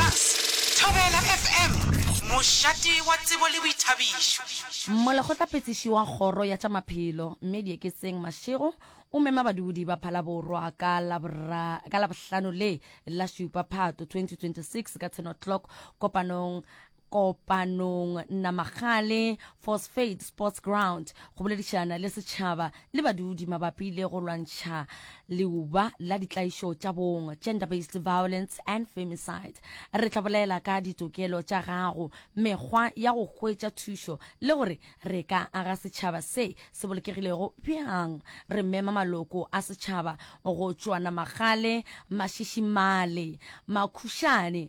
Bass, Thobela FM, mošate wa tsebo le boithabišo. Molekgotlaphethiši wa Kgoro ya tša Maphelo, Mme Dieketseng Mashego, o mema badudi ba Phalaborwa ka ka Labohlano le la šupa Phato 2026 ka 10 o'clock kopanong kopanong Namagale Phosphate Sports Ground go boledišana le setšhaba le badudi mabapi le go lwantšha leuba la ditlaišo tša bong, gender-based violence and femicide. Re tla bolela ka ditokelo tša gago, mekgwa ya go hwetša thušo le gore re ka aga setšhaba se se bolokegilego bjang. Re mema maloko a setšhaba go tšwa Namagale, Mashishimale, Makhušane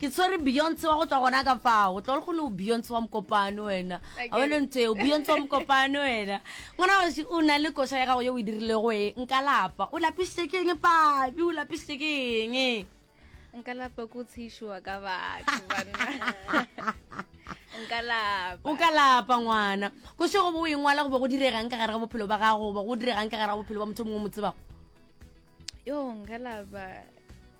Ke tshwere Beyonce wa go tšwa gona ka fao. Tlol go le Beyonce wa mokopano wena. A wena ntho eo Beyonce wa mokopano wena. Ngwana wa o na le koša ya gago ye o e dirilego e nka lapa. O lapisitse ke eng pabi? O lapisitse ke eng? Nka lapa ko tshishiwa ka batho banna. nka lapa o ka lapa ngwana ko se go bo o engwala go be go diregang ka gare ga bophelo ba gago go be go diregang ka gare ga bophelo ba motho mongwe mo tsebago yo nka lapa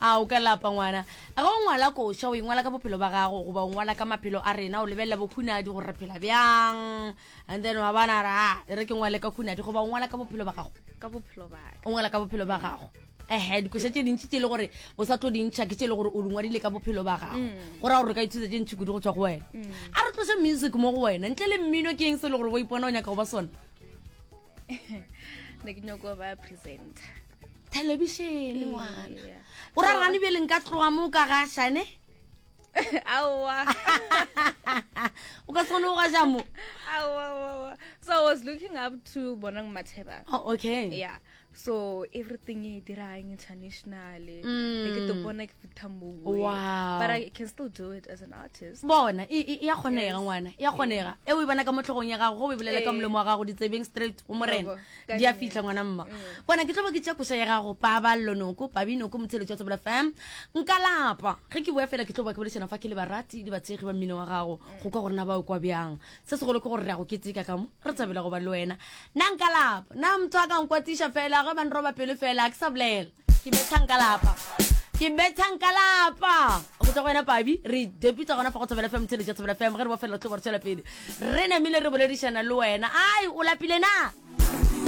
a o ka lapa ngwana a ga o ngwala koša o ingwala ka bophelo ba gago goba o ngwala ka maphelo a rena o lebelela bokhunadi gore re phela bjang and then wa bona ra ah, e re ke ngwale ka khunadi goba o ngwala ka bophelo ba gago o ngwala ka bophelo ba gago ehe dikoša tše dintši tše le gore o sa tlo dintšha ke tše le gore o dingwadile ka bophelo ba gago mm. go raya gore re ka ithuta tše ntšhi kudu go tswa go wena mm. a re tlose music mo go wena ntle le mmino ke eng se le gore o ipona o nyaka go ba sona ne ke nyoko ba presenter thelebišene ngwana o ra gane bjele nka tloga mo ka ga shane aowa o ka tshwane o ga ja mo aowa so i was looking up to bonang matheba oh, okay yeah so everything e dirang internationally mm. ke to bona ke bona e ya kgonega ngwana ya kgonega e o e bona ka mo tlhogong ya gago go o e bolela ka molomo wa gago ditsebeng straight go morena di a fitlha ngwana mma mm. bona ke tlobo ke tša koša ya gago paballo noko pabi noko motsheletso wa tsebela fam nka lapa ge ke boya fela ke tlobo ke bolešana fa ke le barati le batshegi ba mmino wa gago mm. go ka gorena ba o kwa bjang se segolo ke gore re ya go keteka ka mo re tsabela go ba le wena na nka lapa na motho a ka nkwatiša fela ge ba nroba pelo fela a ke sa bolela ke bethang ka lapa ke bethang ka lapa go tsa go wena pabi re depitsa gona fa go tshabela fm tshele ja tshabela fm ge re bofelela tlo gore tswela pele re namile re boledišana le wena ai o lapile na